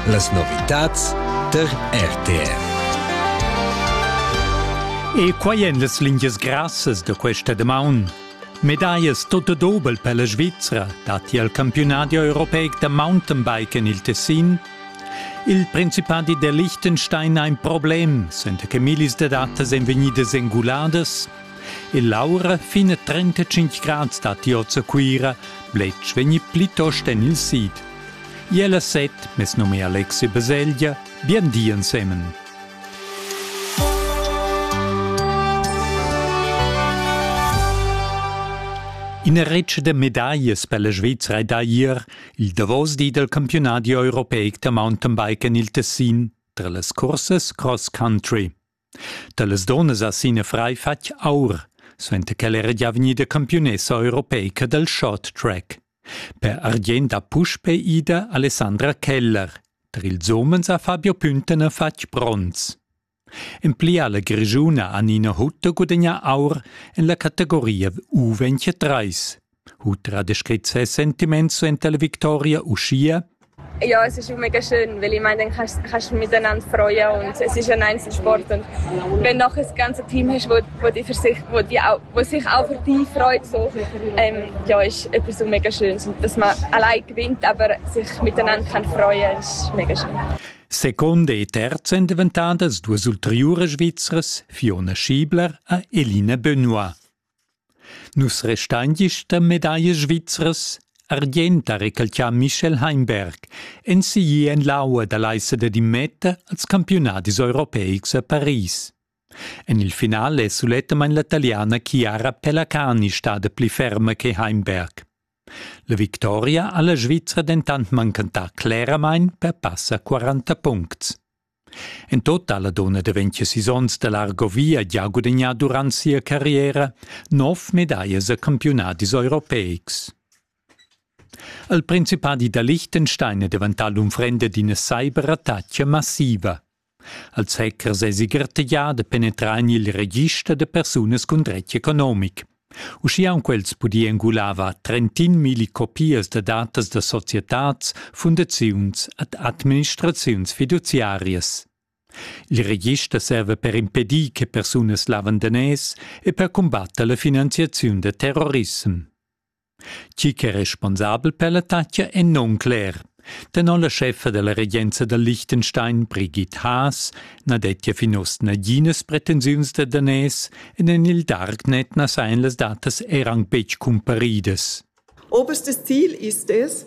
Las novitads tar RTR. E quai èn las lingias grassas da questa damaun. Medaias tot dobel per la Svizzera datti al campiunadi europeic da Mountainbike en il Tessin. Il Principadi der Liechtenstein ha in problem, senta che millis da datas èn vegnidas enguladas E l'aura fin a 35 grads dat oz a Cuira, bletsch vegni plitost en il sid. Iela set, mes num è Alexi Baselgia, bien di ensemen. Ina retg da medaglie per la Svizzera è da ier il davos di del campionat europeic da mountainbike en il Tessin tra las cursas cross country. Dallas donnas ha Sine Frei fatg aur, suenter ch'el era gia vegnida campiunessa europeica dal short track. Per argient ha puspei ida Alessandra Keller. Tar ils umens ha Fabio Püntener fatg bronz. En pli ha la Grischuna Anina Hutter gudagnà aur en la categoria U23. Ultra da scrit ses sentiments suenter la victoria uschia Ja, es ist mega schön, weil ich meine, dann kannst, kannst du miteinander freuen und es ist ein Einzelsport und wenn noch ein ganzes Team hast, wo, wo, die, für sich, wo, die auch, wo sich auch für dich freut, so, ähm, ja, ist etwas so mega Schönes und dass man allein gewinnt, aber sich miteinander kann freuen, ist mega schön. Seconde e terzo in diventadas duas ulteriuras svizzras Fiona Schiebler e Eline Benoit. Nus restain gista medaglia svizras, argient ha recalcià Michel Heimberg, ensigli en l'aua da l'aissa da Dimeta als campiunadis europeics a Paris. En il finale è sulettamain la taliana Chiara Pelacani stada pli ferma che Heimberg. La victoria ha la Svizra dentant mancantà cleramain per passa 40 puncts. En tota la donna daventia sis onns da l'Argovia gia gudagnà durant sia carriera nov medaglias a campiunadis europeics. Il principadi da Liechtenstein è daventà l'unfrenda d'ina cyberattacca massiva. Als hackers èsi gartegià da penetrar en il register da persunas cun dretg economic. Uschia han quels pudì engulava trentin milli copias da datas da societads, fundaziuns ed administraziuns fiduziarias. Il register serva per impedir che persunas lavandanès e per cumbatter la finanziaziun da terrorissem. Chi ch'è responsabel per l'attacca è non cler. Tenor la scheffa della regenza da Liechtenstein, Brigitte Haas, na dettia fin oz naginas pretensiuns da daners ed en il Darknet na sajan las datas er anc betg cumparidas. Oberstes Ziel ist es,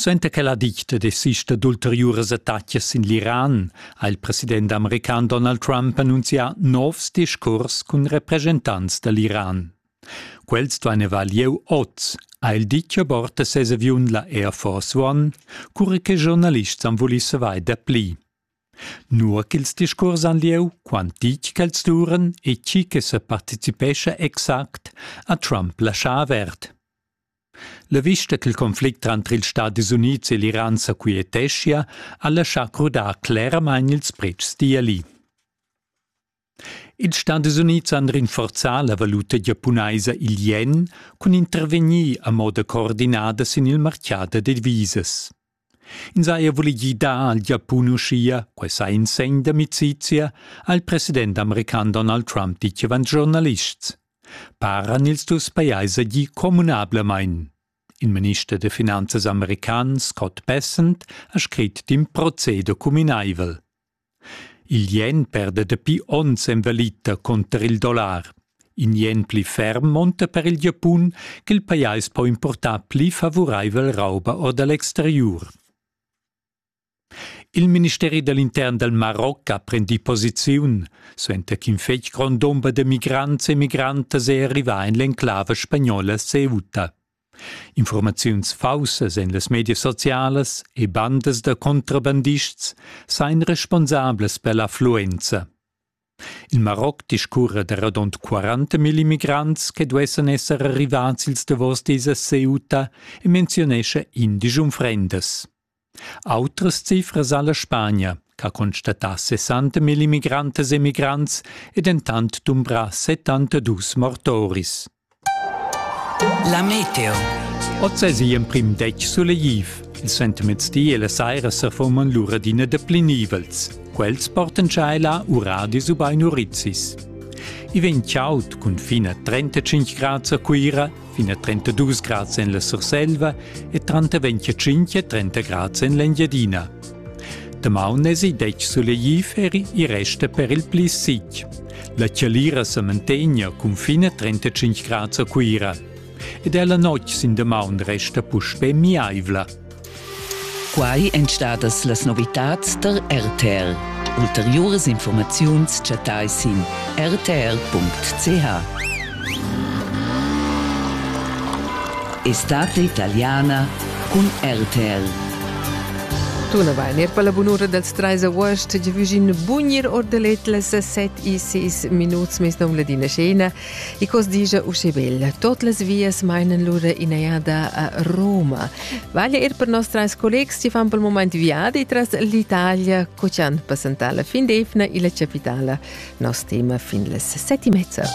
Suenter che la dicta desista d'ulteriuras attacas sin l'Iran ha il president american Donald Trump annunzià novs discurs cun represchentants da l'Iran. Quels duain avair lieu oz, ha il ditg a bord da ses aviun la Air Force One, cura che giornalists han vulì savair dapli. Nua ch'ils discurs han lieu, quant ditg ch'els duran e tgi che sa participescha exact, ha Trump laschà avert. La vista ch'il conflict tranter ils Stadis Unids e l'Iran sa quieteschia ha laschà crudar cleramain ils pretschs d'Iali. Ils Stadis Unids han rinforzà la valuta giapunaisa il ien cun intervegnir a moda coordinada sin il martgà da divisas. Ins ha er voli gidar al Giapun uschia, quai sa in segn d'amicizia, ha il president american Donald Trump ditg avant giornalists. Paran ils dus pajais gi communablamain. Il minister da finanzas american Scott Bessent ha scrit d'in proceder cuminaivel. Il ien perda dapi onns en valita cunter il dollar. In ien pli ferm monta per il Giapun ch'il pajais po importar pli favuraivel rauba or da l'exteriur. Il ministeri dall'intern dal Maroc ha prendì posiziun, suenter ch'in fetg grond dumber da migrants e migrantas è arrivà en l'enclava spagnola Ceuta. Informaziuns faussas en las medias socialas e bandas da contrabandists sain responsables per l'affluenza. Il Maroc discurra da radund 40.000 immigrants che duessan esser arrivats ils davos dis a Ceuta e menziunescha indig unfrendas. Autras cifras ha la Spagna, ch'ha constatà 60 000 immigrantas e migrants e dentant dumbrà 72 mortoris. La meteo. Oz es igl emprim detg sulegliv. Il sentemezdi e la saira sa forman lura d'ina da pli nivels. Quels portan tschaila uradis ubain urizis. I vegn chaud cun fin a 35 grads a Cuira fin a 32 grads en la Surselva e tranter 25 e 30 grads en l'Engiadina. Damaun esi detg sulegliferi e resta per il pli sic. La chalira sa mantegna cun fine 35 grads a Cuira ed ella notg sin damaun resta puspè miaivla. Quai èn stadas las novitads tar RTL. Ulteriuras informaziuns chattai sin rtl.ch. Estate italiana cun RTL. Tunavain er per la bunura dals trais august giavüschin bugnir or da let las set e sis minuts mes nom Ladina Schena I cos digia usche bel. Tot las vias meinen lura inajada a Roma. Vaglia ir per nos treis collegs si fan pel moment viadi tras l'Italia, co ci han passentala fin d'Efna illa capitala. Nos tema fin las seti mezza.